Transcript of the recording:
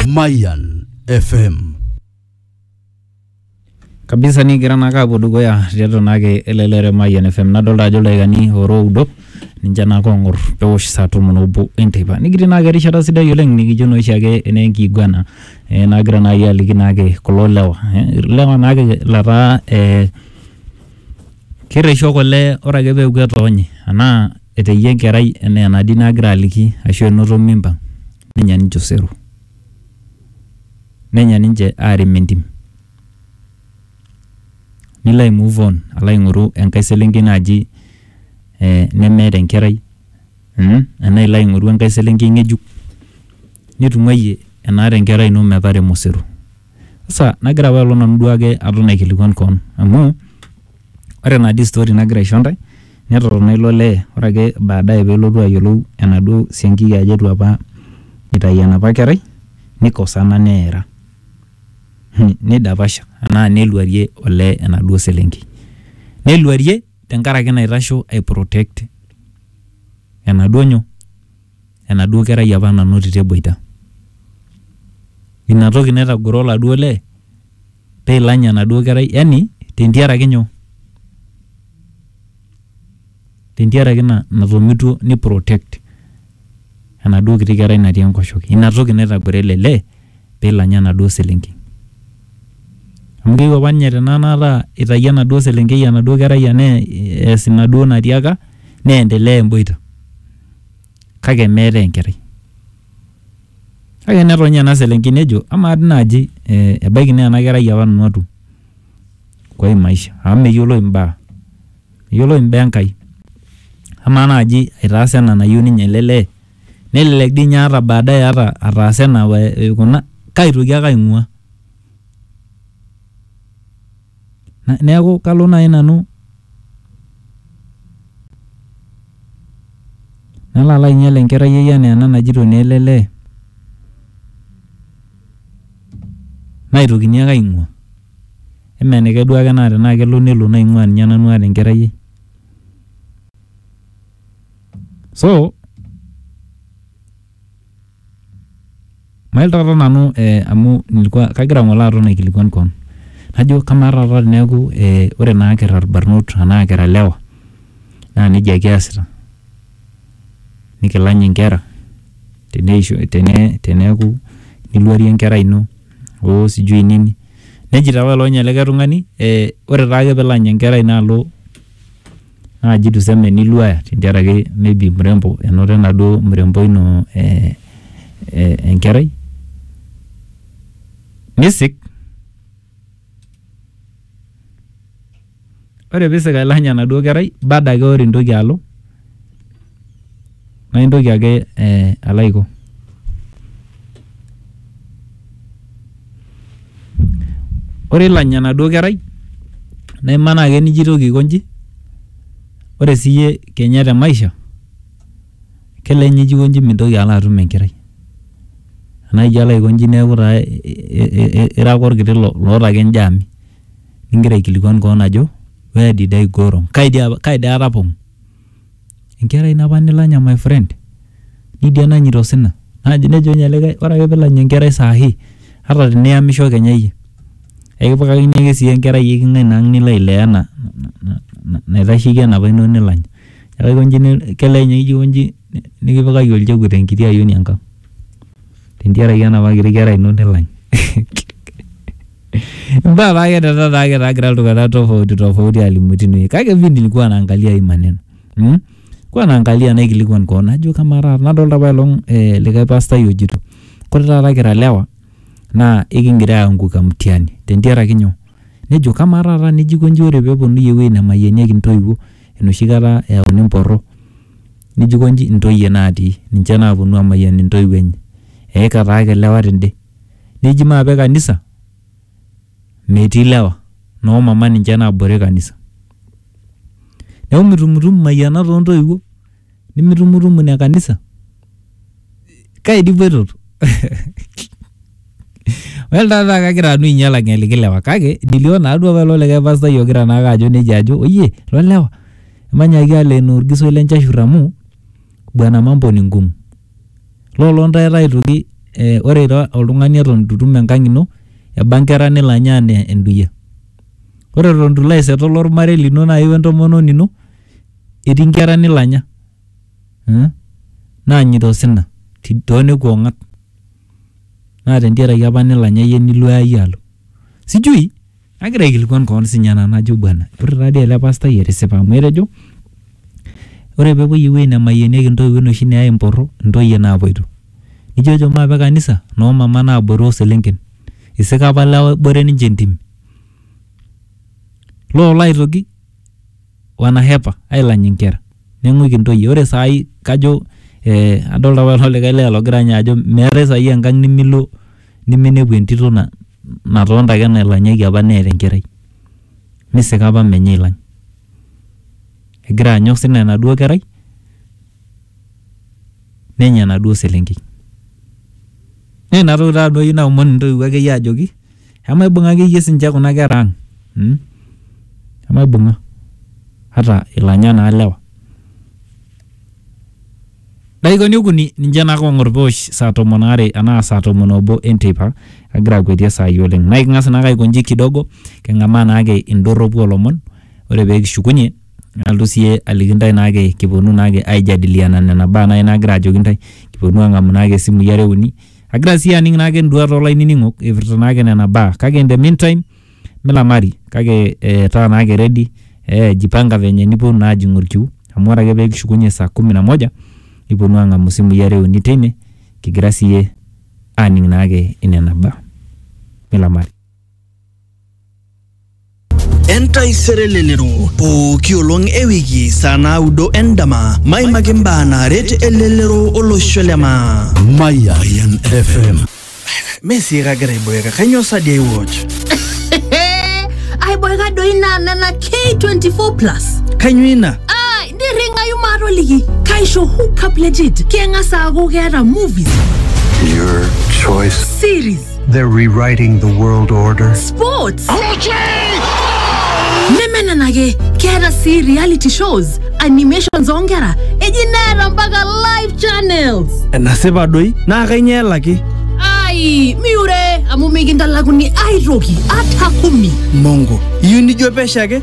Mayan FM. kabisa nikigira naake apuo dukuya tiatua naake ele lere Mayian FM nadolta ajo ildaikani ora oudo ninche naake ong'or pewosh saa tomon obo enteipa nikitii naake erishata sidai oleng nikijo naa oshiake enaa enkiguana eh, nagira naai aliki naake kulo lewa eh, ilewa naake lataa eh, kerresho kule ore ake peeku etoonye anaa Etayie enkerai enaa enatii nagira aliki ashu enoto mimba nenya ninche osero. Nenya ninche aarem entim. Nilo ai move on alo aing'oru enkae selenkei naaji nemeeta enkerai enaa ilo aing'oru enkae selenkei ng'ejuk nitung'uayie enaata enkerai ino metaremo osero. Sasa nagira apa alo nanu duake aton aikilikuan koon amu ore naa dii story nagira aisho ntae netotona ilo lee ore ake baadaye pelotu ayiolou enaduo siankiki ajo etu apa itai enapa kerai nikosana neera hmm, nidapasha anaa neluarie olee enaduo selenkei neluarie tenkaraki naitasho ai protect enaduo nyoo enaduo kerai apa nanotito eboita. Ina toki naitagoro oladuo lee pee ilany enaduo kerai yani tentiaraki nyoo? Tentiaraki ina natomitua ni protect enaduo kiti kerai natii enkoshoke. Ina toki naitagoro ele lee pee ilanya enaduo selenkei. Amu keyieu apa ninye tenakata itayio enaduo selenkei enaduo kerai enaduo natiaka nee endelea emboita. kake meeta enkerai. Kake netoni ena selenkei nejo amaa dii naaji ebaiki naa ena kerai apa nanu atum kwa hii maisha amu meyioloi imbaa, meyioloi imbaa Enkai. Amaa naaji aitaasa ena nayieu ninye ele lee? Nelelek dii ninye ata baadaye ata ataasa ena aikuna kaitoki ake aing'ua. Na- Neaku kalo nai nanu nalo alo ainyal enkerai ai anaa ena najito naa ele lee, naitokini ake aing'ua. Emee enikae duo ake naa tenaa kelo nelo naing'ua ninye nanu aata enkerai ai. So, Mayiolo taata nanu eh amu nilikuwa kagira ng'ole aton aikilikwan kewon. Najo kamaa taata teneaku eh ore naa kira ilbarnot anaa kira ilewa naa neija kiasita nikilany inkera teneisho, teneaku niluarie enkerai ino oo sijui nini. Nejito apa ilo ninye likae tung'ani eh ore taake piilany enkerai ino alo naaji tuseme niluaya tentiaraki maybe mrembo enoto enaduo mrembo ino eh, eh, enkerai nisik ore piisik ailany enaduo kerai bado ake ore intoki alo Naa intoki ake alo aiko, ore ilo anya enaduo kerai naa imanaa ake nijo aitoki aiko inji, ore sii iyie kenya te maisha kelelek ninye ijo aiko inji mintoki alo atum enkerai. Enaa ijo alo aiko inji neeku taa ira ake olkiti loota ake injaami nigira aikilikuan keon ajo where did I go wrong? Kai dii aatapong'o? Enkerai napa nilanya my friend nidia nanyita osina naji nejo ninye likae ore ake pilany enkerai sahi ata tiniyamisho kenya iyie ekipikakini ake sii enkerai eking'ae naang nilo ailea ena naitasheki enapa ino nilanya neeku aikonji ni- kelee ninye ijo aikonji ni- nikipikaki olchekut enkiti ayioni enkang tentiaraki enapa kiti kerai ino nilany Mbaa paake tata taake egira iltung'anak tofauti tofauti alimu tinewueji. Kake mimi nilikuwa naangalia hii maneno. Hmm? Kwa naangalia naikilikuan koon najo kamaa taata nadolta apa elong eh, likae pastai ojito kore taata kira lewa naa ikingira aianguka mtihani tentiaraki nyoo? Nejo kamaa taata nejo aikonji ore peponunui ewuei nemayianieki intoiwuo enoshi kata eyauni mporro nejo aikonji intoyie natii ninche naponu amayian intoiwuo enye eika taake ilewa tende. neji maape kanisa metii lewa noo mama ninche naabore kanisa. Neeku mitumutumu imayianat oo ntoiwuo nimitumutumu ine kanisa. Kai dii ipoitoto? Well taata kagira nanu ainyal ang'eliki lewa kake dilio naaduo apa ilo likae pastai ogira naake ajo nejia ajo oyie lo lewa emanyaaki alo enaa orgisoi le nchashurr amu bwana mambo ni ngumu Lolo ntae aitoki eh, ore ira oltung'ani eton itu itum enkang ino, eba nkera nilo anya anaa enduya. Ore eton itu ilo aisetol ormarei lino nai wentomononi ino, etii nkera nilo anya. Naanyita osina tonekua ong'at. Na tentiaraki apa nilo anya yie nilo ai alo. Sijui. Nagira aikilikuan koon sinye ena najo bwana, ore taadii ele pastai etisipa amu etejo ore pepuoi ewuei nemayienieki intoiwuo enoshi neyai emporro intoyie naapoito. Nijo ejo maape kanisa noo mama naaboru o selenken. Isika apa lewa ebore ninche entim. Loolo aitoki wanahepa ailany inkera neng'uiki intoyie ore saai kajo eh, adolta apa ilo likae lee logira ninye ajo meetae saai enkang nimilo niminepu entito na, natonta ake nailanyaki apa neeta enkerai nisika apa menye ailany egira anya osina enaduo kerai nenya enaduo selenkei naa inatoki taa nanu ayieu naomon intoiwuo akeyie ajoki. Emaibung'a akeyie sinche kuna kera ang mm? Emaibung'a ata ilanya naa lewa. Daikani okuni ninche naa kong'or peosh saa tomon aare anaa saa tomon obo enteipa agira akuetie saai oleng. Naa iking'as naake aikonji kidogo king'amaa naake indorropu olomon ore pee kishukunye nalotu siiyie aliki intae naake kiponu naake aijadiliana nena baa naake naagira ajoki intae, kiponu ang'amu naake isimui are uni Agira sii aning naake enduata olainining'ok eipirta naake nena baa kake in the meantime milamari kake eh, taa naake ready eh, jipanga venye niponu naa ajing'u olkiu amu ore ake pee kishukunye saa kumi na moja niponu aang'amu isimui are uni teine kigira siiyie aning naake inena baa milamari. entaisere elelero pooki olong e wiki saa naudo endama maimaki mbaa naaret elelero olosho le maa Mayan FM. mesii kagira aiboeka kainyoo sadi aiwatch aiboeka doi naa nena k24 plus kainyoo ina ai nirring'ayu maatoliki kaisho hookup legit keng'as aaku keeta movies Your choice. series They're rewriting the world order. Sports. nemenenake keeta sii reality shows animations oonkera eji neeta mpaka live channels enasipa doi naa kainyoo elaki ai miure amu mikintalakuni aitoki ata kumi mongo iyieu nijo pesho ake